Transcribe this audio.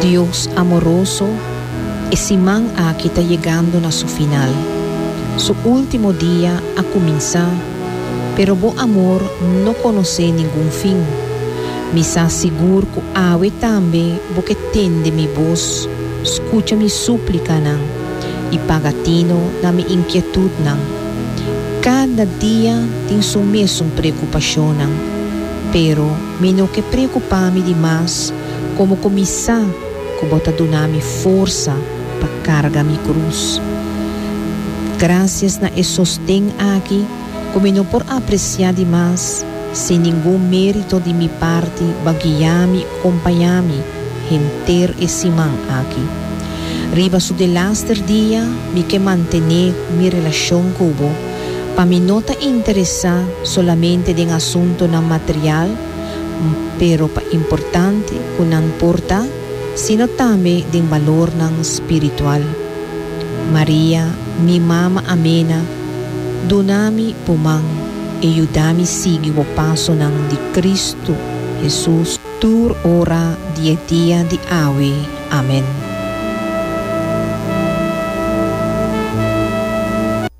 Dios amoroso, e siman aki ta yegando na su final. Su ultimo dia a cuminsa, pero bo amor no conoce ningun fin. Mi sa sigur cu awe tambe bo ke tende mi voz, scucha mi suplicanan y paga tino na mi inquietudnan. Cada dia tin su mesun preocupacionnan, pero. Mi no ke preokupá mi di mas komo ku mi sa ku Bo ta duna mi forsa pa karga mi krus. Grasias na e sosten aki ku mi no por apresiá di mas, sin ningun mérito di mi parti Bo a guiá mi i kompañá mi henter e siman aki. Riba su delaster dia mi ke mantené mi relashon ku Bo, Pa mi no ta interesá solamente den asuntunan material, m pero pa importante ku nan por ta, sino tambe den balornan spiritual. Maria, mi mama amena, duna mi bo man e yuda mi sigui bo pasonan di Kristu Hesus tur ora di e dia di awe. Amen.